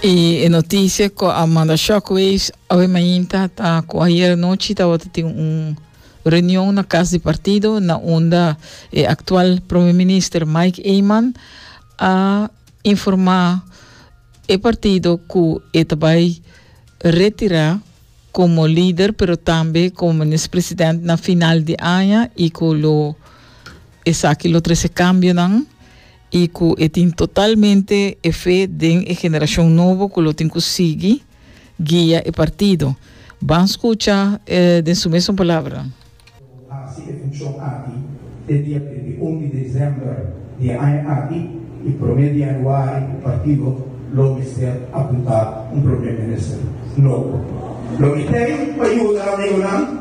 Y e noticia cu a manda shockwaves awe mainta ta cu ayer anochi tabata tin un reunion na cas di partido na unda e actual prome minister Mike Eman a informa e partido cu e ta bay retira como lider pero tambe como minister president na final di aña y cu lo esaki lo trece cambionan. i ku e tin totalmente e fe den e generashon nobo ku lo tin ku sigui guia e partido. Ban skucha e den su mesun palabra. Lo hasi e funshon aki te dia trinta i un di desèmber di e aña aki i promé di yanuari e partido lo mester apuntá un Promé Minister nobo. Lo mit'ei pa yuda amigonan.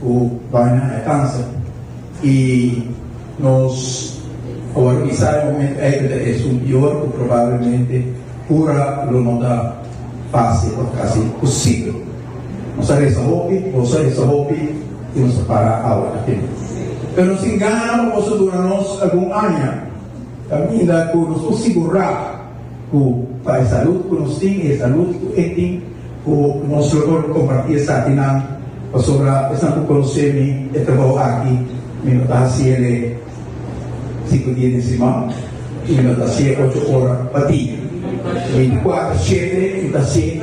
Ku bai na e kansa. I nos a wòrdu bisa e momentu ei ku ta esun pior ku probablemente kura lo no ta fásil òf kasi imposibel. Nos a resa hopi, boso a resa hopi ku nos ta para awa na tempu. Pero sin gana pa boso dura nos algun aña kaminda ku nos por sigurá. ku pa e salud ku nos tin i e salud ku e tin ku nos lo por kompartí esakinan pasobra esnan ku konosé mi e trabou aki mi no ta hasi el e sinku dia den siman i mi no ta hasi el ocho ora pa dia. Binti kuater shete mi ta hasi.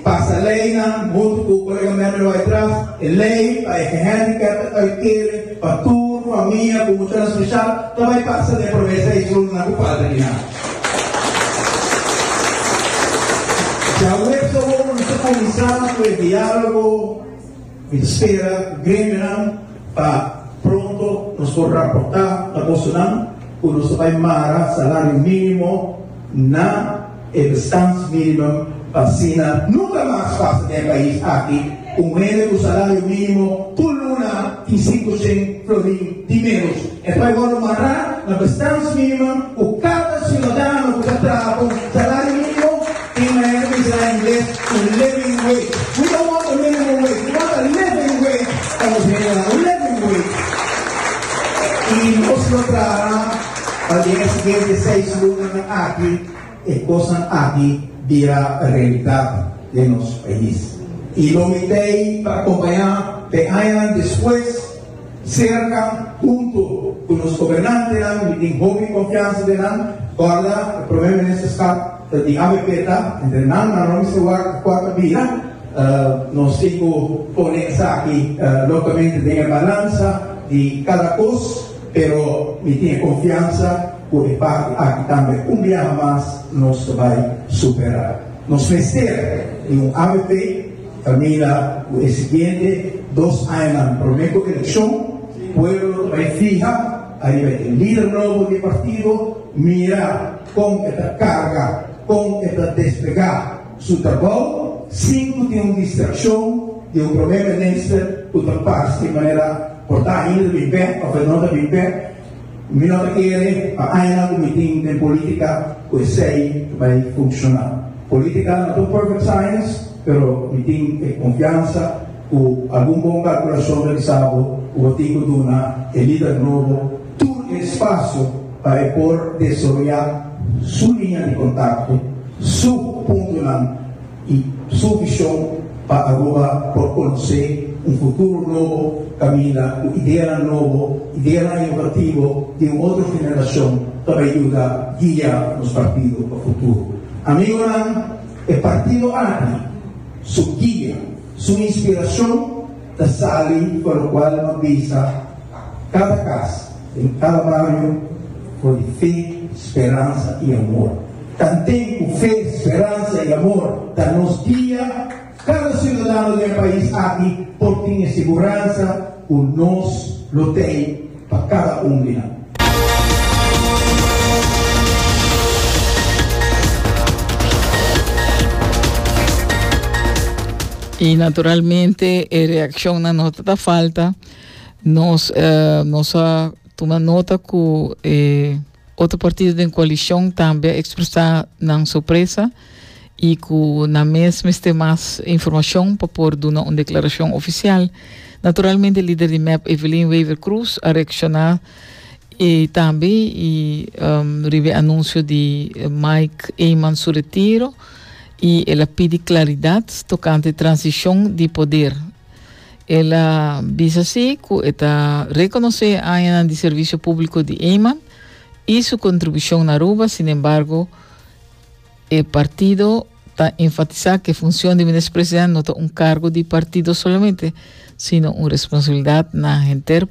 Pasa leinan huntu ku kolegamentu bai tras e lei pa e gehandicapte ta bai kere pa tur famia ku muchanan speshal ta bai pasa den e promé seis runnan ku falta di nan. Djaweps awor nos ta kuminsá ku e diálogo. Mi ta spera cu gremionan pa pronto nos por raporta na bosonan cu nos ta bay mara salario minimo na e bestandsminimum pa asina nunca mas pasa den e pais aki un hende cu salario minimo tur luna tin sinku cen florin di menos. E paigornan mará na bestans minimo ku kada siudadano ku ta traha pa un salario minimo i manera di bisa na ingles un living wage. We don't want a minimum wage, we want a living wage, ta nos hende nan, un living wage. I nos lo traha pa di e siguiente seis lunnan aki. E kosnan aki bira realidat den nos pais. I lo mit'ei ta akompañá den añanan despues, serka, huntu ku nos gobernantenan. Mi tin hopi konfiansa den nan. Kòrda, e Prome Ministerskap ta di avp ta entre nan, ma no mester wak a kòrta bira. Nos tin ku pone esaki lontamente den e balansa di kada kos, pero mi tin e konfiansa. cu e parti aki tambe un biaha mas nos ta bay supera. Nos mester di un avp ta mira cu e siguiente dos añanan prome cu eleccion pueblo lo ta bay fiha ariba e lider nobo di e partido mira con e ta carga, con e ta despega su trabao sin cu tin un distraccion di un prome minister cu ta parce manera por ta ainda ta bin bek of e no ta bin bek. Mi no ta kere pa añanan ku mi tin den polítika ku esei ta bai funshoná. Polítika no ta un perfect science, pero mi tin e konfiansa ku algun bon kalkulashon realisado ku bo tin ku duna e lider nobo tur e spasio pa e por desaroyá su liña di kontakto, su puntonan. y su vision pa Aruba por conoce un futuro nobo caminda cu ideanan nobo, ideanan innovativo di un otro generacion pa bay yuda guia nos partido pa futuro. Amigonan, e partido aki, su guia, su inspiracion, ta sali pa lokual no bisa kada kas den kada bario for di fe, speransa i amor. Tanten ku fe, speransa i amor ta nos guia, kada siudadano den e pais aki por tin e siguransa ku nos lo tei. pa cada un di nan. Y naturalmente e reaccionnan no ta ta falta. Nos, eh, nos a tuma nota cu e. Eh, Otro partido den coalicion tambe a expresa nan sorpresa y cu nan mes mester mas informacion pa por duna un declaracion oficial. Naturalmente lider di mep Evelyn Wever Croes a reacciona y tambe y riba e anuncio di Mike Eman su retiro y el a pidi claridad tocante transicion di poder. El a bisa si cu e ta reconoce e añanan di servicio publico di Eman y su contribucion na Aruba, sin embargo e partido ta enfatisa cu e funcion di Minister President no ta un cargo di partido solamente, sino un responsabilidad na henter